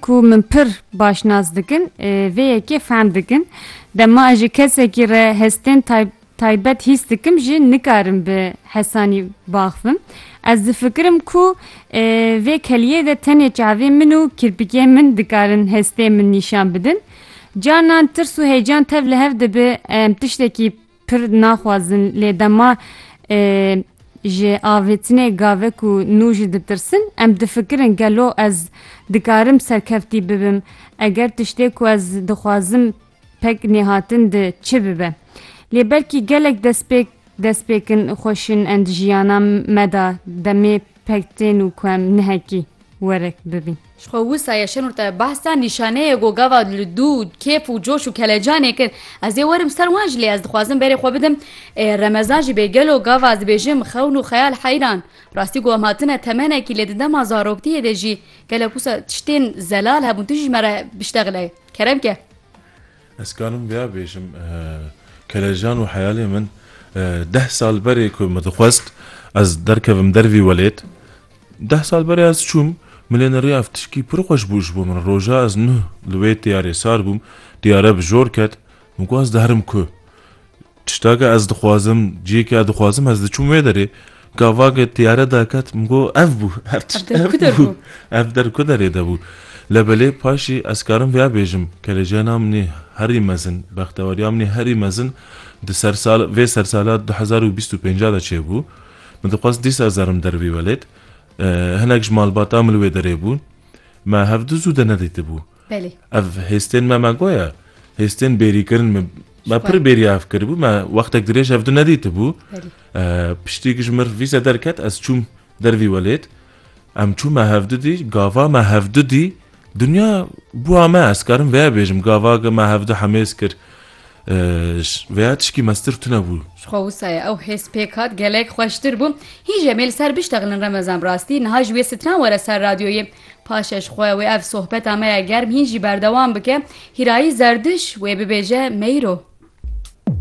Ku min pir baş nas dikin, vê yekê fehm dikin. Dema ez ji kesekî re hestên taybet hîs dikim jî nikarim bi hesanî baxivim. Ez difikirim ku vê keliyê de tenê çavên min û kirpikên min dikarin hestê min nîşan bidin. Carnan tirs û heyecan tev li hev dibe em tiştekî Pir naxwazin lê dema ji avêtinê gavek û nû jî ditirsin, em difikirin gelo ez dikarim serkeftî bibim eger tiştê ku ez dixwazim pek nêhatin di çi bibe. Lê belkî gelek destpêk destpêkin xweşin en di jiyana me de demê Pek tên û ku em nehekî werek bibîn. Ji xwe wisa ye Şenur te behsa nîşaneyê ku gava li dû kêf û coş û kelecanê kir. Ez ê werim ser wan jî lê ez dixwazim berê xwe bidim Remezan jî bê gelo gava ez dibêjim xewn û xeyal heyran. Rastî ku em hatine temenekî lê di dema zaroktiyê de jî gelek wisa tiştên zelal hebûn tu jî ji me re biştexile kerem ke. Ez karim vêya bêjim, kelejan û heyalê min deh sal berê ku min dixwest ez derkevim der vî welêt, deh sal berê ez çûm, min lê nirî ev tişkî pir xweş bû ji bo min. Roja ez nuh li wê tiyarê sar bûm, tiyare bi jor ket, min got ez diherim ku? Tiştake ez dixwazim, ciyêke ez dixwazim, ez diçûm wê derê. Ka vage tiyare derket, min got ev bû, her tişt ev bû. Ev der ku derê de bû. Lebelê paşî ez karim vêya bêjim, kelejiyana min ê herî mezin, bextewariya min ê herî mezin di ser sal vê ser sala du hezar û bîst û pênc de çêbû. Min dixwest dîsa zerim der bî welêt hinek ji malbata min li wê derê bûn. Me hevdu zû de nedîtibû. Belê. Ev hêstên me me got ye. Hêstên bêrîkirin me me pir bêriya ev kiribû. Me wextek dirêj ev di nedîtibû. Piştî ku ji mir vîze derket ez çûm dervî welêt. Em çû me hevdu dî gava me hevdu dî dinya bûa me ez karim vê bêjim gava ge me hevdu hemêz kir. Vêya tişkî mestir tune bû. Xwe wisaye ew hêz pêk hat gelek xweştir bû. Hîn jemê li ser biştexilin remezan rastî niha ji wê stran were ser radyoyê Paşê ji xwe wê ev sohbeta me ya germ hîn jî berdewam bike, Hîrayî Zerdiş wê bibêje Meyro.